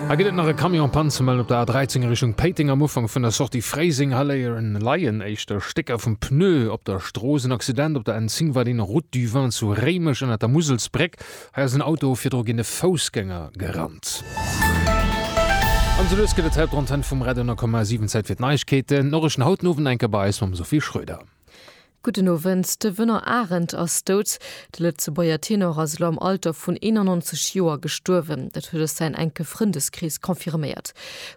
Hei gëtt et nach e Camion en panne ze mellen op der A13 a Richtung Péiteng. Am Ufank vun der Sortie Fréiseng hei leien éischter Stécker vum Pneu op der Strooss. En Accident op der N 10 war deen, Route du Vin zu Réimech ënnert der Muselsbréck. Hei ass en Auto virdru géint e Foussgänger gerannt. An esou lues gëtt et Zäit op der Antenn vum Radio 10,7. Zäit fir d'Neiegkeeten. D'Noriichten haut den Owend enke bei eis mam Sophie Schröder. Gudden Owend, De Wënner Arendt ass dout. De Lëtzebuerger Tenor ass elo am Alter vun 91 Joer gestuerwen. Dat huet eis säin enke Frëndeskrees confirméiert.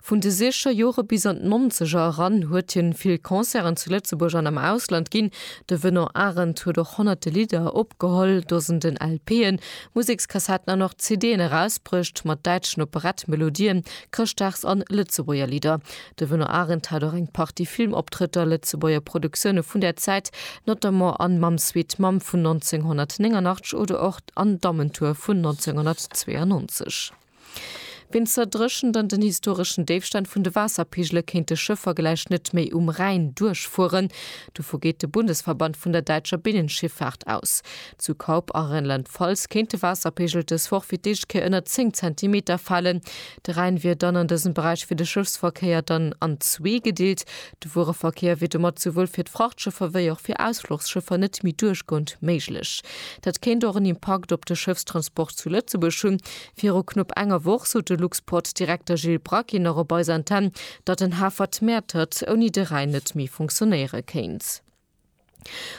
Vun de Siecher Jore bis an d'Nonzeger eran huet hien vill Concerten zu Lëtzebuerg an am Ausland ginn. De Wënner Arendt huet och honnerte Lidder opgeholl, Dosenden LPen, Musekskassetten an och CDen erausbruecht mat däitschen Operettmelodien, Chrëschtdags an Lëtzebuerger Lidder. De Wënner Arendt hat och eng Partie Filmoptrëtter, Lëtzebuerger Produktioune vun där Zäit, notamment an Mam Sweet Mam vun 1989 oder och an Dammentour vun 1992. Wéinst der Dréchent an den historeschen Déifstänn vun de Waasserpegele kéinte Schëffer gläich net méi um Rhäin duerchfueren. Dovu geet de Bundesverband vun der däitscher Binnenschiffaart aus. Zu Kaup a Rheinland-Pfalz kéint de Waasserpegel dës Woch fir d'éischt Kéier ënner 10 Zentimeter falen. De Rhäin wier dann an dësem Beräich fir de Schëffsverkéier dann an zwee gedeelt. De Wuereverkéier wier domat souwuel fir d'Frachtschëffer wéi och fir Ausfluchsschëffer net méi duerchgoend méiglech. Dat kéint och en Impakt op de Schëffstransport zu Lëtzebuerg hunn. Viru knupp enger Woch sot de Luxport-Direkter Gilles Braquin nach op eiser Antenn, datt den Hafer d'Mäertert ouni de Rhäin net méi funktionéiere kéint.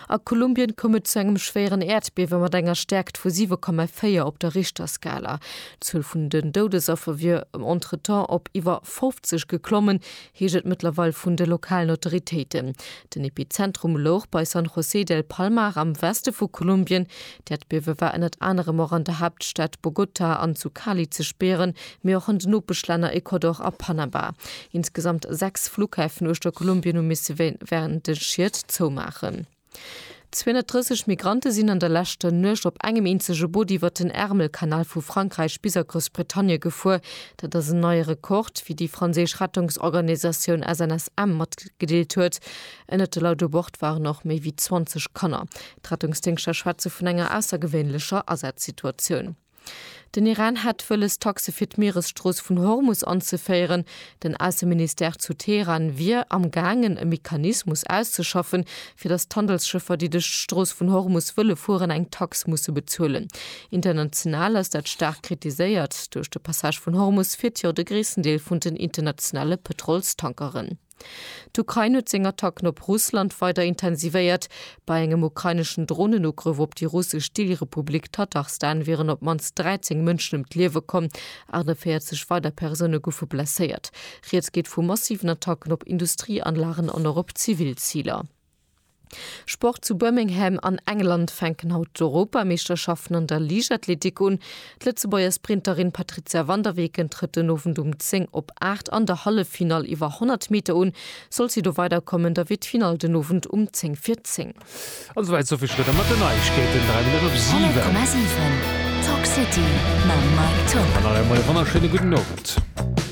A Kolumbien koum et zu engem schwéieren Äerdbiewe mat enger Stäerkt vu 7,4 op der Richterskala. D'Zuel vun den Doudesaffer wier entretemps op iwwer 50 geklommen, heescht et mëttlerweil vun de lokalen Autoritéiten. Den Epizentrum louch bei San José del Palmar am Weste vu Kolumbien. D'Äerdbiewe war ënnert anerem och an der Haaptstad Bogota an zu Cali ze spieren, mee och un d'Nopeschlänner Ecuador a Panama. Insgesamt sechs Flughäfen uechter Kolumbien hu misse wärend de Schied zoumaachen. 230 Migrante sinn an der leschter Nuecht op engem eenzege Boot iwwert den Ärmelkanal vu Frankräich bis a Groussbritannie gefuer. Dat ass en neie Rekord, wéi déi franséisch Rettungsorganisatioun SNSM matgedeelt huet. Ënnert de Leit u Bord waren och méi wéi 20 Kanner. D'Rettungsdéngschter schwätze vun enger aussergewéinlecher Asazsituatioun. Den Iran hätt wëlles, Taxe fir d'Mieresstrooss vun Hormus anzeféieren. Den Ausseministère zu Teheran wier am gaangen, e Mechanismus auszeschaffen, fir datt d'Handelsschëffer, déi duerch d'Strooss vun Hormus wëlle fueren, eng Tax musse bezuelen. International ass dat staark kritiséiert. Duerch de Passage vun Hormus fiert jo de gréissten Deel vun den internationale Pëtrolstankeren. D'Ukrain huet seng Attacken op Russland weider intensivéiert. Bei engem ukraineschen Dronenugrëff op déi russesch Deelrepublik Tatarstan wieren op d'mannst 13 Mënschen ëm d'Liewe komm, 48 weider Persoune goufe blesséiert. Rieds geet vu massiven Attacken op Industrieanlagen an och op zivil Ziler. Sport, Zu Birmingham an England fänken haut d'Europameeschterschaften an der Liichtathletik un. D'Lëtzebuerger Sprinterin Patrizia van der Weken trëtt den Owend um 10 op 8 an der Halleffinall iwwer 100 Meter un. Sollt si do weiderkommen, da wier d'Finall den Owend um 10 vir 10. An esou weit Sophie Schröder mat den Neiegkeeten. 3 Minutten of 7. 100,7 Talk City mam Mike Tock. An nach emol e wonnerschéine gudden Owend.